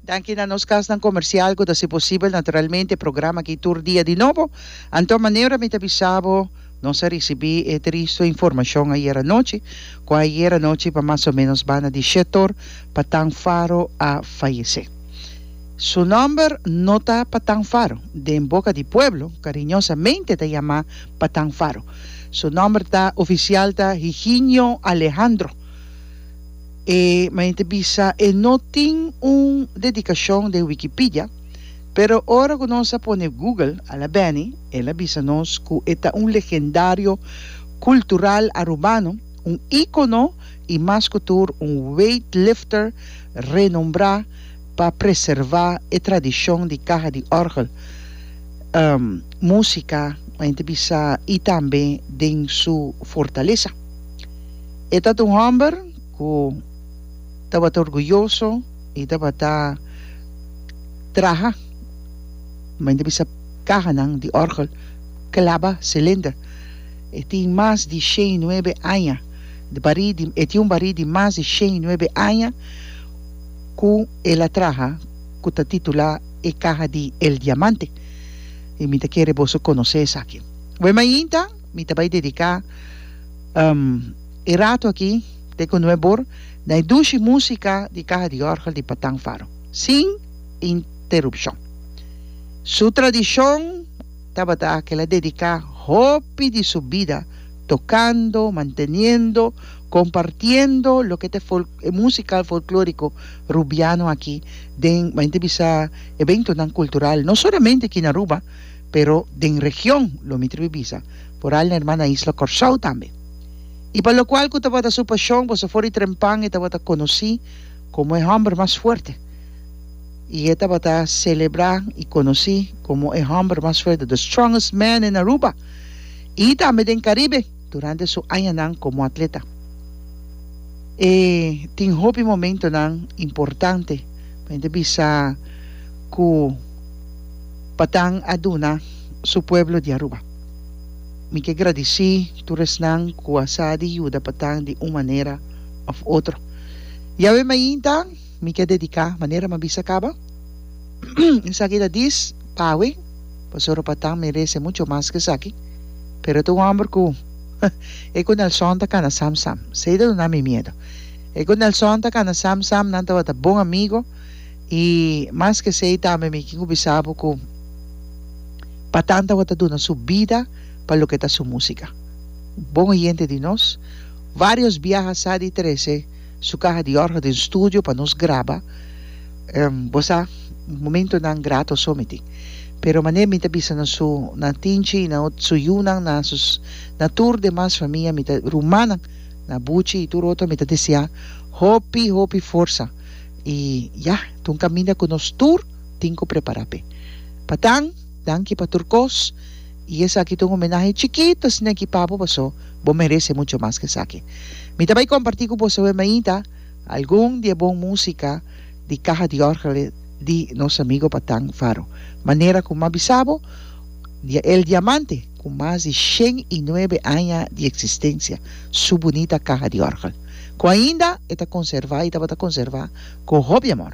Danki na nos kasnan komersial ku ta si posibel naturalmente programa aki tur dia di nobo. Anto maneura mi ta bisa bo nos a risibi e tristo informashon ayer anochi ku ayer anochi pa mas o menos banda di shet or Patan Faro a fayese. Su nòmber no ta Patan Faro, den boka di pueblo kariñosamente ta yama Patan Faro. Su nòmber ta ofisial ta Higinio Alejandro. E mainta bisa e no tin un dedikashon den Wikipidia, pero ora ku nos a pone Google a la bèni, el a bisa nos ku e ta un legendario kultural arubano, un íkono i mas ku tur un weightlifter renombrá pa preservá e tradishon di kaha di òrgel, músika, mainta bisa i tambe den su fortalesa. E tabata un hòmber ku tabata orguyoso i tabata traha mente bisa kahanan di òrgel klaba silinder. E tin mas di shei i nuebe aña di barí di e tin un barí di mas di shei i nuebe aña ku el a traha ku ta titulá E Caja di El Diamante i mi ta kere boso konosé esaki. Wemmainta mi ta bai dediká. E rato aki te ku nuebor na e dushi musika di kaha di orgel di Patang Faro sin interupshon. Su tradishon tabata kila dediká hopi di su bida tokando, manteniendo, kompartiendo loke ta e musikal folklóriko rubiano aki den ba'inta bisa eventonan kultural no solamente aki na Aruba, pero den region lo mi tribi bisa por al na hermana isla Corsou tambe y pa locual cu tabata su pasion boso for di trempan e tabata conoci como e homber mas fuerte y e tabata celebra y conoci como e homber mas fuerte the strongest man in Aruba y tambe den Caribe durante su añanan como atleta e tin hopi momentonan importante pa mi ta bisa cu. Patan a duna su pueblo di Aruba. Mi ke gradisí tur esnan ku a sa di yuda Patan di un manera òf otro. Yawe mainta mi ke dediká manera mi a bisa kaba. Esaki ta dis pawe, pasobra Patan merese mucho mas ku esaki, pero e ta un hòmber ku e ku Nelson ta kana sam sam. Se i ta duna mi miedu. E ku Nelson ta kana sam sam, nan tabata bon amigo. I mas ke esei tambe mi kin ku bisa bo ku pa tanta bo ta duna su bida pa loke ta su músika. Bon oyente di nos, vários biaha sa di trese su kaha di òrga den studio pa nos graba. Bo sa, momentunan grato so mi tin. Pero mané mi ta bisa na su, na Tinchi i na su yunan, na su, na tur demas famia, mi ta, rumannan, na Buchi i tur otro, mi ta deseá hopi, hopi forsa. y ya ta un caminda cu nos tur tin cu prepara pe. Patan, danki pa tur cos y esaki ta un homenahe chikit pa Snake y Papo paso bo merece mucho mas que esaki. Mi ta bay comparti cu bosoe mainta algun di e bon musica di caha di orgele di nos amigo Patan Faro manera cu m'abisa bo di El Diamante. Ku mas di shen i nuebe aña di eksistensia, su bunita kaha di òrgel, ku ainda e ta konservá i tabata konservá ku hopi amor.